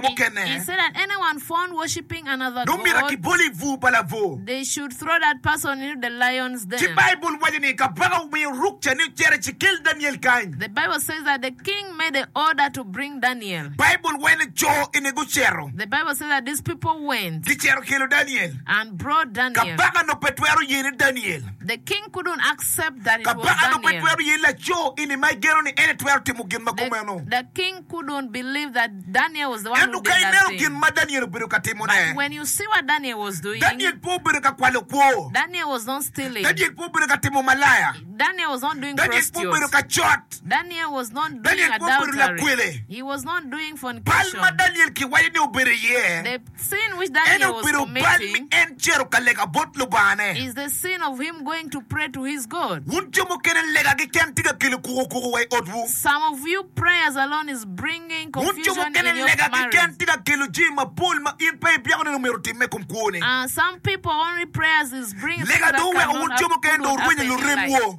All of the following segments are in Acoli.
mukene. Dong myero akibol i bur pa labwor. Ci Baibul waco ni kabaka omiyo ruk ca ni ocer ecikel Daniel kany. Baibul waco ni co eni gucito, gicito kelo Daniel. Kabaka onongo pe twero ye ni Daniel, kabaka onongo pe twero ye ni laco eni ma egeno ni en etwero timo gin ma kumeno. Ento ka ineno gin ma Daniel obedo ka timone, Daniel pe obedo ka kwalo kwo, Daniel pe obedo ka timo malaya, Daniel pe obedo ka cot, Daniel pe obedo lakwele. Bal ma Daniel kiwaco ni obedo iye En obedo bal ni en cito ka lega bot Lubangane. Wun jo mukene lega keken tye ka kelo kuko kuko wa i otwu. Wun jo mukene lega keken tye ka kelo jami mapol ma in pe ibyeko nino myero otimme i kom kwoni. Lega dong oweko wun jo mukene dong orwenyo luremwu.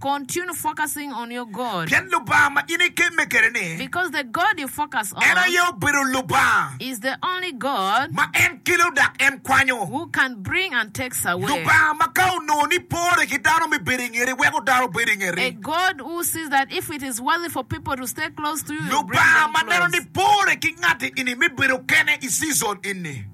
Continue focusing on your God. Pien Lubanga ma in ikemme kwede-ni. Because the God you focus on. En aye obedo Lubanga. Is the only God. Ma en kelo dok en kwanyo. Who can bring and takes away. Lubanga ma ka onongo ni pore ki dano me bedo i ngeti, weko dano obed i ngeti. A God who sees that if it is worthy for people to stay close to you, you bring them close. Lubanga ma neno ni pore ki ngati ini me bedo kene i season ini.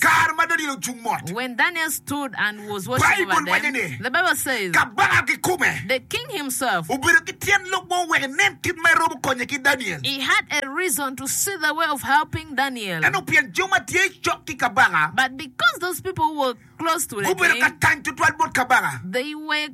Kare ma Daniel ocung mot, Baibul waco ni, Kabaka kikome obedo ki tyen lok mo wek enen kit ma eromo konye ki Daniel. Ento pien jo ma tye cok ki kabaka gubedo ka kany tutwal bot kabaka,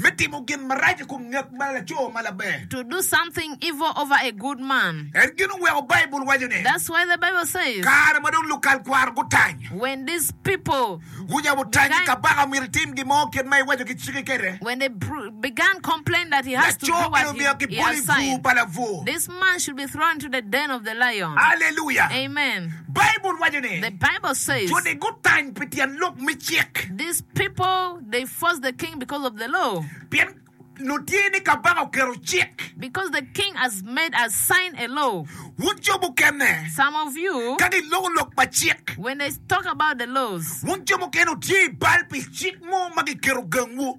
me timo gin marac i kom ngec ma laco ma laber. En gin oweko Baibul waco ni, Kare ma dong lukal kwaro gutany, gucako tanyi kabaka omyero itim gin mo kit ma iwaco ki ciki kwede. Laco eno omyero kibol i bur pa labwor. Aleluya! Baibul waco ni, Jo ni gutany pi tyen lok me cik, pien nongo tye ni kabaka oketo cik. Wun jo mukene, ka giloko lok pa cik, wun jo mukene wutye i bal pi cik mo ma kiketo gangwu.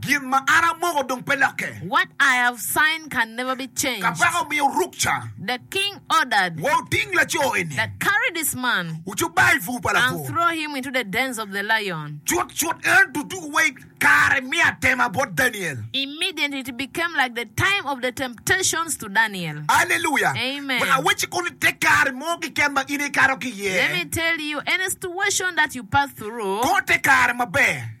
Gin ma an amoko dong pe lokke. What I have signed can never be changed. Kabaka omiyo ruk ca. The king ordered. Wa wuting laco eni. That carry this man. Wucuba i bur pa lapur. And throw him into the dens of the lion. Cutcut en duduku wa i kare me atema bot Daniel. Immediately it became like the time of the temptations to Daniel. Alleluia! Amen. Wek awacci koni te kare mo keken ma in ikato ki iye. Let me tell you any situation that you pass through. Kor te kare maber.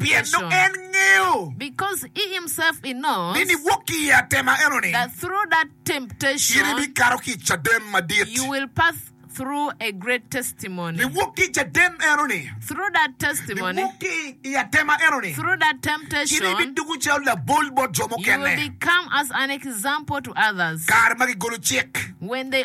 pien dong en ngeyo ni niwok ki i atema enoni, in ibikato ki i caden madit. Niwok ki i caden enoni, niwok ki i atema enoni, in ibidoko calo labol bot jo mukene kare ma kigolo cik.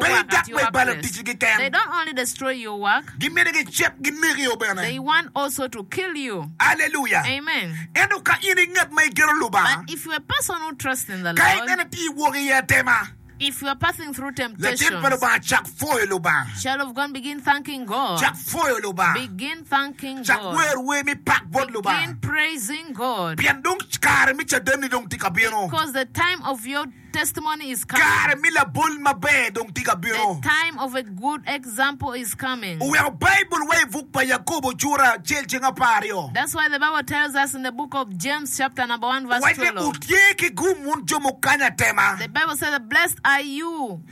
pe dok me balo ticgi keken. Gimito gicit ginekio bene. Aleluya! Ento ka in i ngat ma igeto Lubanga, ka i nene tye wok i atema, Lacen pa Lubanga cak pwoyo Lubanga, cak pwoyo Lubanga, cak wer wer me pak bot Lubanga, pien dong kare me cadenni dong tye ka bino. Kare me labol maber dong tye ka bino. Oweko Baibul wa i buk pa Yakobo cura acel ceng apar aryo. Owacce, Wutye ki gum wun jo mukanya tema.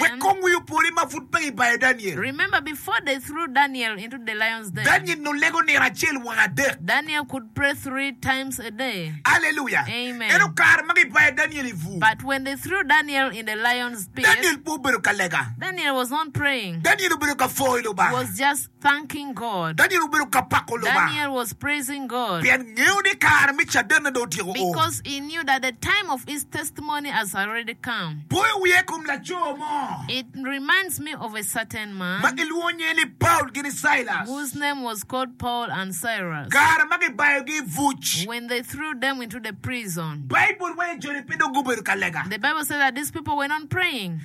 Wek kong wi opori ma pud pe ibayo Daniel. Daniel nongo lego nino acel wa adek. Aleluya! Ento kare ma gibayo Daniel i bur, Daniel pe obedo ka lega. Daniel obedo ka pwoyo Lubanga. thanking God. Daniel obedo ka pako Lubanga Daniel was praising God pien ngeyo ni kare me cadene dong otyeko o. because he knew that the time of his testimony has already come. Poyo wiya i kom laco mo It reminds me of a certain ma man gilwongo nyinge ni Paul gi ni Silas. whose name was called Paul and Cyrus. Kare ma gibayogi i buc, When they threw them into the prison, Baibul waco joni pe dong gubedo ka lega. the Bible said that these people were not praying.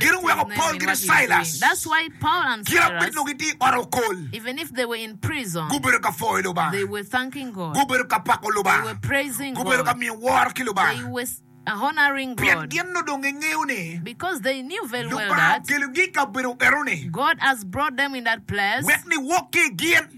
Gin oweko Paul ki dong Cailas kit ma gubino nongo gitye i ot okol, gubedo ka pwoyo Lubanga, gubedo ka pako Lubanga, gubedo ka miyo woro ki Lubanga, pien gin onongo dong gingeyo ni Lubanga okelogi i kabedo enoni wek niwok ki i gin.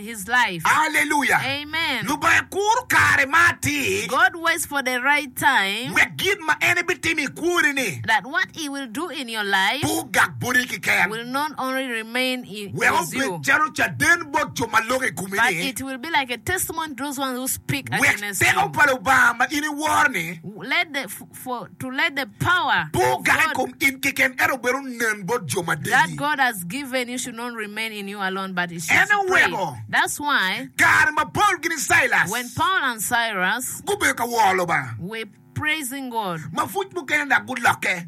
Aleluya! Lubanga kuro kare ma atir wek gin ma en ebitimo i kwoni-ni pe ogak boti keken, wek obed calo caden bot jo ma loko i komi-ni, wek teko pa Lubanga ma in iworo-ni Pur kaka i kom in keken, ento bed onen bot jo ma degi. En aye oweko kare ma Paul gini Cailas gubedo ka woro Lubanga ma pwuc mukene dok gulokke.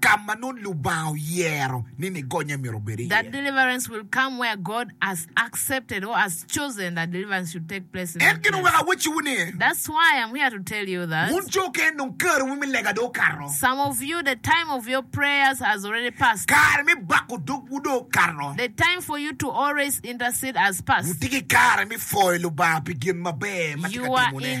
ka ma nongo Lubanga oyero ni nigonye myero obed iye. En gin oweko awacciwu ni, wun jo okene nongo kariwu me lega dong okato, kare me bako dogwu dong okato, wutye ki kare me pwoyo Lubanga pi gin maber ma tye ka timone.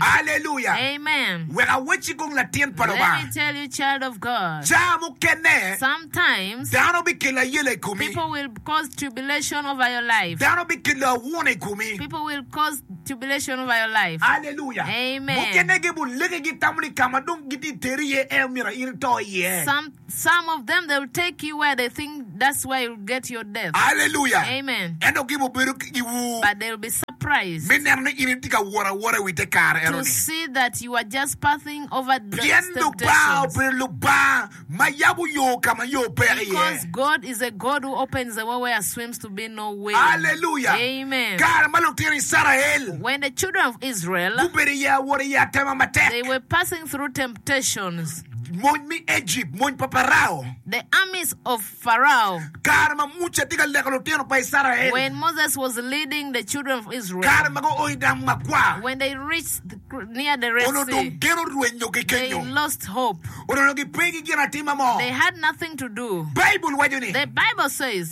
Aleluya! Wek awacci kong latin pa Lubanga, caa mukene dano bikelo ayela i komi, dano bikelo awuna i komi. Aleluya! Mukene gin bulege gitamo ni ka ma dong gitye ka teri iye en myero in ito iye. Aleluya! Ento gibibedo ki giwu me neno ni in itye ka wot awota i wi te kare eno-ni, pien Lubanga obedo Lubanga ma yabo yo ka ma yo peke iye. Aleluya! Kare ma lutino Icrael gubedo i awot i atema matek, Mony me Ejipt, mony pa Parao. The armies of Pharaoh. Kare ma Muca tye ka leko lutino pa Icrael. When Moses was leading the children of Israel. Kare ma guo i dam makwar. When they reached near the Red Sea. Onongo dong gen orwenyo ki kenyo. They lost hope. Onongo gipe ki ginatima mo. They had nothing to do. Baibul waco ni. The Bible says.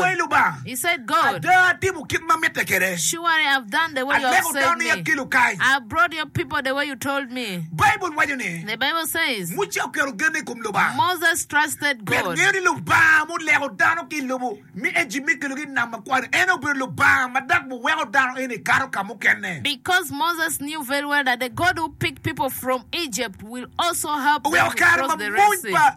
Wai Lubanga, ada atimo kit ma mitte kwede, aleko dani akelo kany. Baibul waco ni, Muca oketo genne i kom Lubanga, pien engeyo ni Lubanga ma oleko dano ki i lobo me Ejipt me kelogi i Nam Makwar-ri, en aye obedo Lubanga ma dok biweko dano eni kato ka mukene. Oweko kare ma mony pa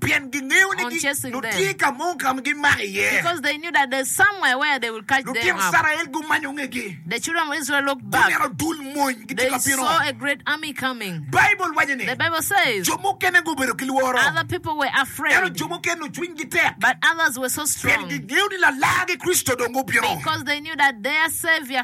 pien gingeyo ni nongo tye ka mo ka ma gimako iye. Lutino Icrael gumanyo ngegi, guneno dul mony gitye ka bino. Baibul waco ni jo mukene gubedo ki lworo, ento jo mukene cwinygi tek pien gingeyo ni Lalargi Kricito dong obino.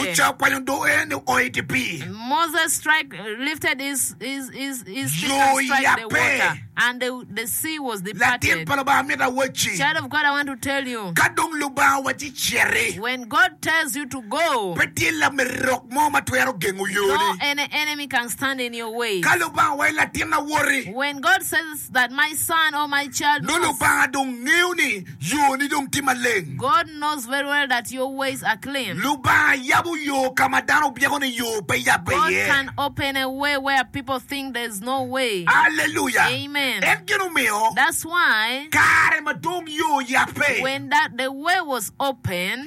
Muca okwanyo doge ni ooi i dye pii. Yo oyape. Latin pa Lubanga mito awacci, ka dong Lubanga owacci iciti, pe tye lamerok mo ma twero gengo yoni. Ka Lubanga owacci latinna woti. Nongo Lubanga dong ngeyo ni yoni dong tye maleng. Lubanga yabo yo ka ma dano obyeko ni yo pe yabbe iye. Aleluya! En gin omiyo kare ma dong yo oyabbe.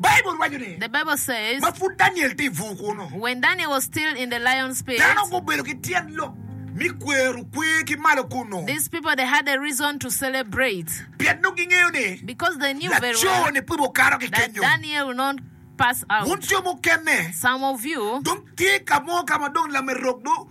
Baibul waco ni, The Bible says, ma pud Daniel tye i bur kunnu, When Daniel was still in the lion's pit, dano gubedo ki tyen lok me kwero kwer ki malo kunnu, these people they had a reason to celebrate, pien nongo gingeyo ni because they knew very well laco-ni pud okato ki that kenyo. Daniel will not pass Wun out. jo mukene Some of you, dong tye ka mo ka ma dong lamerok dong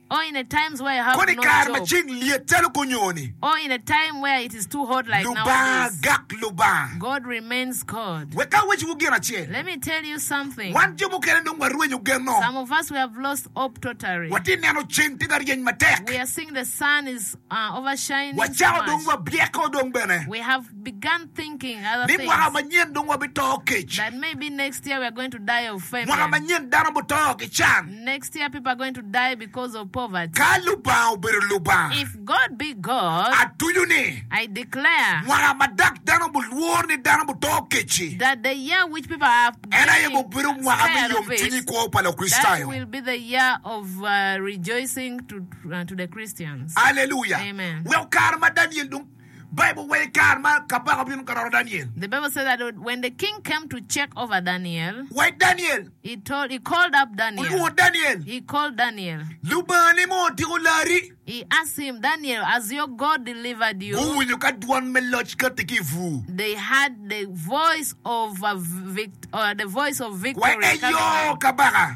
Kodi i kare ma ceng lyet calo kunyoni, Lubanga gak Lubanga. Wek awecciwu gin acel, wan jo mukene dong warwenyo genwa. Watye ka neno ceng tye ka ryeny matek. Wacako dong wabyeko dong bene ni mwaka manyen dong wabito kec. Mwaka manyen dano buto ki can. Ka Lubanga obedo Lubanga, atuco ni mwaka ma dok dano bulwor ni dano buto kec-ci, en aye bibedo mwaka me yomcwiny i kwo pa Lukricitayo. Aleluya! Weko kare ma Daniel dong Bible waco i kare ma kabaka obino ka roro Daniel. Wai Daniel! Olwongo Daniel! Lubanga ni mo otiko lari! Guwinyo ka dwan me loc kati ki i bur. Wai eyo, kabaka!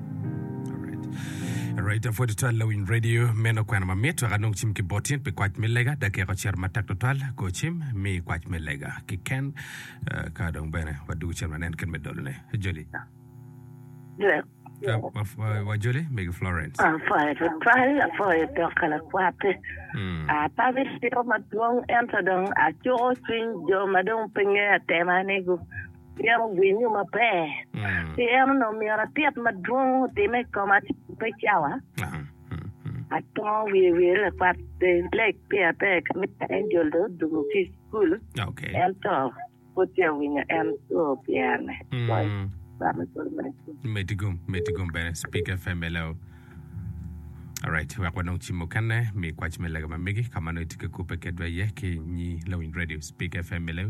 Raita pwod twal lawiny radio meno kwena ma mit wek anong cim ki botin pi kwac me lega dakika ocito matek tutwal go cim mi kwac me lega kiken eh, ka dong bene wadugu cen wanen kit me dolone joli Dwek. Ka wa- wa- wajoli megi florence Apwoyo tutwal, apwoyo dok ka lakwate. Mm. Ah, pa bitiro madwong ento dong acuko cwiny jo ma dong pe ngeya tema ni gu Pien ogenyo maber, pi en onongo myero atit madwong otimme i koma pe cawa. Atongo wiye wire lakwat pe lek peya ber ka mitte Angel dong odwogo ki i cukul, ento pud peya winyo en co pyerene. Meti gum, meti gum bene Speak FM hello. Alright, wek wanong cim mukene mi kwac me lega ma megi ka ma nongo itye ka kubbe kedwa iye ki nyi lawiny radio Speak FM hello.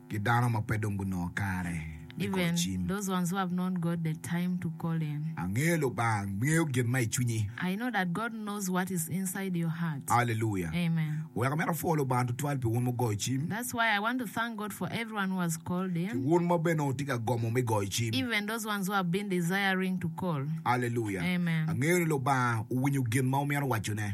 ki dano ma pe dong gunongo kare me goyo cim. Angeyo Lubanga ngeyo gin ma i cwinyi. Aleluya! Wek amito apwo Lubanga tutwal pi wun mugoyo cim, ki wun ma bene wutye ka gomo me goyo cim. Aleluya! Angeyo ni Lubanga owinyo gin ma wumito wacone.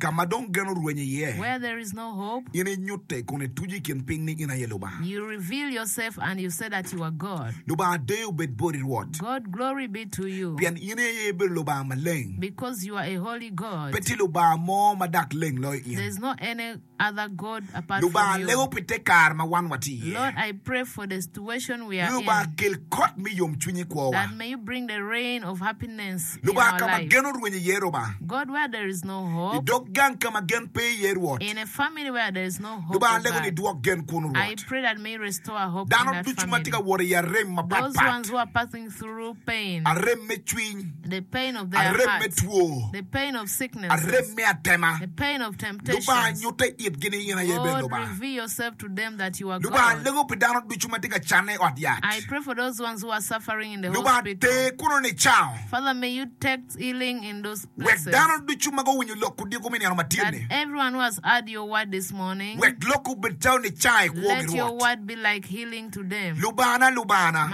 Ka ma dong gen orwenyo iye, in inyutte kun ituco i kin piny ni in aye Lubanga. Lubanga deyo bed boti, Rwot, pien in aye ibedo Lubanga maleng. Pe tye Lubanga mo ma dak leng loyo in. Lubanga lengo pi te kare ma wan watye iye. Lubanga kel kot me yomcwiny i kwowa. Lubanga ka ma gen orwenyo iye Rubanga. I dog gang ka ma gen pe iye Rwot. Lubanga lengo ni idwok gen kunu Rwot. Dano ducu ma tye ka wot i arem mapat pat. arem me cwiny, arem me two, arem me atema. Lubanga nyutte itgi ni in aye bene Lubanga. Lubanga lego pi dano ducu ma tye ka canne i ot yat. Lubanga ter kuno nicawa. Wek dano ducu ma guwinyo lok odiko me nino matin-ni, wek lokki obed calo nicaga i kwogi, Rwot. Lubana, Lubana,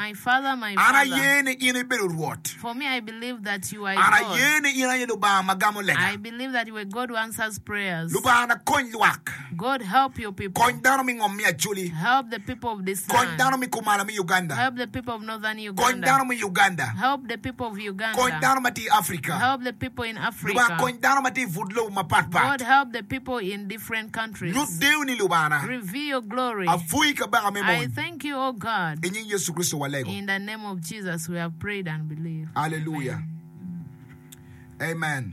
an aye ni in ibedo Rwot. An aye ni in aye Lubanga ma gamo lega. Lubanga, kony lwak. Kony dano me ngom me Acholi. Kony dano me kumalo me Uganda. Kony dano me Uganda. Kony dano ma tye i Africa. Lubanga, kony dano ma tye i but lobo mapat pat. Nyut dewoni, Lubanga. Apwoyi, Kabaka me mony. I nying Yecu Kricito walego. Aleluya. Amen.